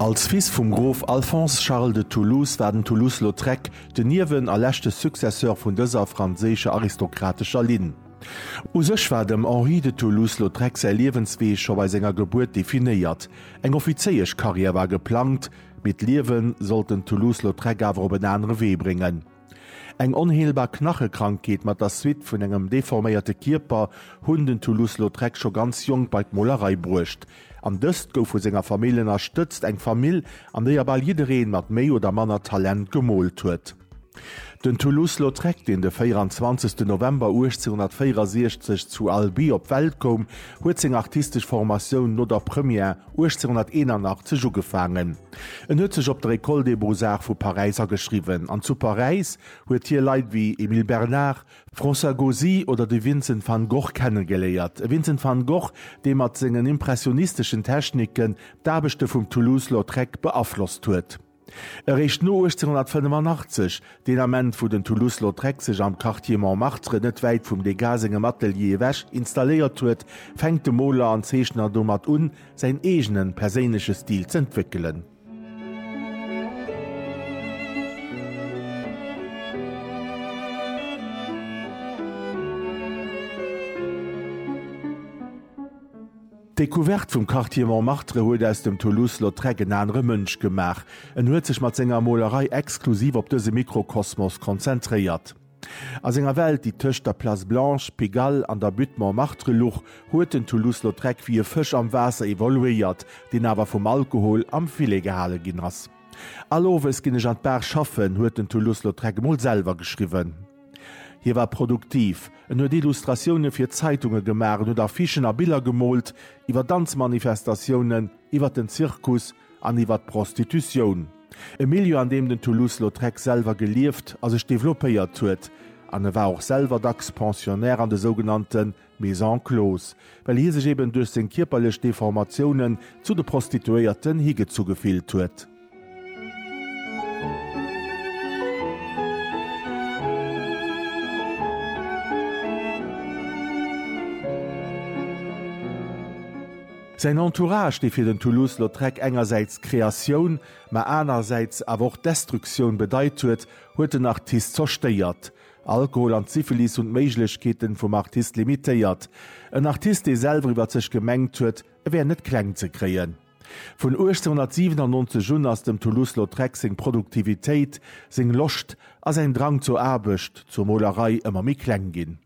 Als Fils vum Grof Alphonse Charles de Toulouse war den Toulouse-Lautrec de Niewen a leschte Successeur vun dëser franséischer aristokratescher Linn. U sech war dem Henri de Toulouse-Lautrec säi Liewenswee scho bei senger Gebuert definéiert. Eng Offizéiesch-Karriär war geplangt, mee d'Liewe sollt den Toulouse-Lautrec awer op en anere Wee bréngen. Eng onheelbar Knachekrankheet mat der Suite vun engem deforméierte Kierper hunn den Toulouse-Lautrec scho ganz jonk bei d'Molerei bruecht. An dëst gouf vu senger Famill ënnerstëtzt, eng Famill, an déier bal jiddereen mat méi oder manner Talent gemoolt huet. Den Toulouse-Lautrec, deen de 24 November 1864 zu Albi op d'Welt koum, huet seng artistesch Formatioun no der Première, 1881 ugefaangen. En huet sech op der École des beaux-arts vu Paräis ageschriwwen an zu Paräis huet hie Leit wéi Émile Bernard, François Gauzy oder de Vincent van Gogh kennegeléiert. E Vincent van Gogh, dee mat sengen impressionisteschen Techniken d'Aarbechte vum Toulouse-Lautrec beaflosst huet. Eréischt no 1885, deen Ament wou den Toulouse-Lautrec sech am Quartier Montmartre net wäit vum Degas sengem Atelier ewech installéiert huet, fänkt de Moler an Zeechner domat un, säin eegene perséinleche Stil z'entwéckelen. D'Decouverte vum Quartier Montmartre huet aus dem Toulouse-Lautrec en anere Mënsch gemaach. En huet sech mat senger Molerei exklusiv op dëse Mikrokosmos konzentréiert. A senger Welt, déi tëscht der Place Blanche, Pigalle an der Butte Montmartre luch, huet den Toulouse-Lautrec wéi e Fësch am Waasser evoluéiert, deen awer vum Alkohol am Filet gehale ginn ass. All Owes ginn ech an d'Bar schaffen, huet den Toulouse-Lautrec emol selwer geschriwwen. Hie war produktiv, en huet Illustratioune fir Zeitunge gemaach, en huet Affichen a Biller gemoolt iwwer Danzmanifestatiounen, iwwer den Zirkus an iwwer d'Prostitutioun. E Milieu, an deem den Toulouse-Lautrec selwer gelieft a sech developpéiert huet. An e war och selwer dacks Pensionnaire an de sougenannte mee sans clause, well hie sech eben duerch seng kierperlech Deformatiounen zu de Prostituéierten higezu gefillt huet. Säin Entourage, dee fir den Toulouse-Lautrec engersäits d'Kreatioun, mä anerersäits awer och d'Destruktioun bedeit huet, huet den Artist zerstéiert. Alkohol an d'Syphilis hunn d'Méiglechkeeten vum Artist limitéiert. En Artist dee selwer iwwert sech gemengt huet e wär net kleng ze kréien. Vun 1897 un ass dem Toulouse-Lautrec seng Produktivitéit, seng Loscht a säin Drang zur Aarbecht, zur Molerei ëmmer méi kleng ginn.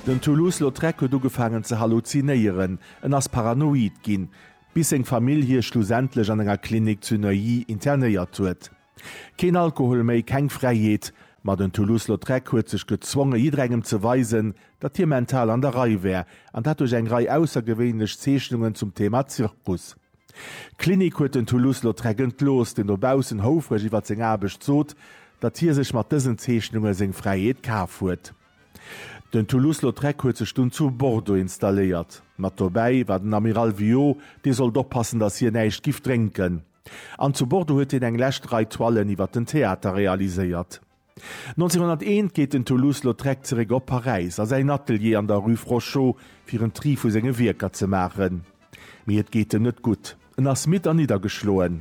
Den Toulouse-Lautrec huet ugefaangen ze halluzinéieren, en ass paranoid ginn, bis seng Famill hie schlussendlech an enger Klinik zu Neuilly internéiert huet. Keen Alkohol méi, keng Fräiheet, ma den Toulouse-Lautrec huet sech gezwonge jidderengem ze weisen, datt hie mental an der Rei wär, an dat duerch eng Rei aussergewéinlech Zeechnungen zum Thema Zirkus. D'Klinik huet den Toulouse-Lautrec entlooss, deen dobaussen houfreg iwwer seng Aarbecht sot, datt hie sech mat dësen Zeechnunge seng Fräiheet kaf huet. Den Toulouse-Lautrec huet sech dunn zu Bordeaux installéiert. Mat dobäi war den Amiral Viaud, dee sollt oppassen, datt hien näischt giff drénken. An zu Bordeaux huet hien eng lescht Rei Toilen iwwer den Theater realiséiert. 1901 geet den Toulouse-Lautrec zeréck op Paräis a säin Atelier an der Rue Frochot, fir en Tri vu senge Wierker ze maachen. Mee et geet em net gutt. En ass midd a niddergeschloen.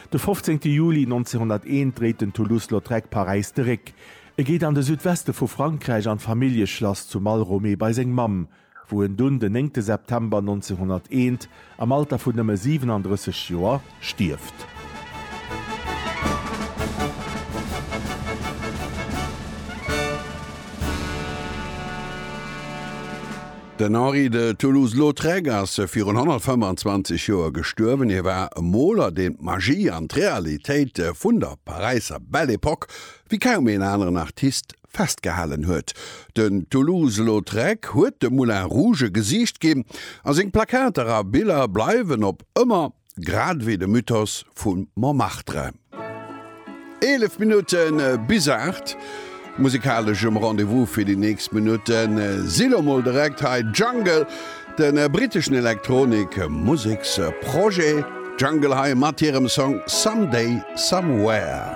De 15 Juli 1901 dréit den Toulouse-Lautrec Paräis de Réck. E geet an de Südweste vu Frankräich an d'Familljeschlass zu Malromé bei seng Mamm, wou en dunn den 9 September 1901 am Alter vun nëmme 37 Joer stierft. Den Henri de Toulouse-Lautrec ass virun 125 Joer gestuerwen. Hie war e Moler, deen d'Magie an d'Realitéit vun der Paräisser Belle Epoque wéi kaum een aneren Artist festgehalen huet. Den Toulouse-Lautrec huet de Moulin Rouge e Gesiicht ginn a seng Plakater a Biller bleiwen op ëmmer. grad wéi de Mythos vu Montmartre. Eelef Minutte bis aacht, musikalesch um Rendez-vous fir déi nächst Minutten si lo mol direkt hei Jungle, de briteschen Elektronik-Museksprojet Jungle hei mat hirem Song Someday Somewhere.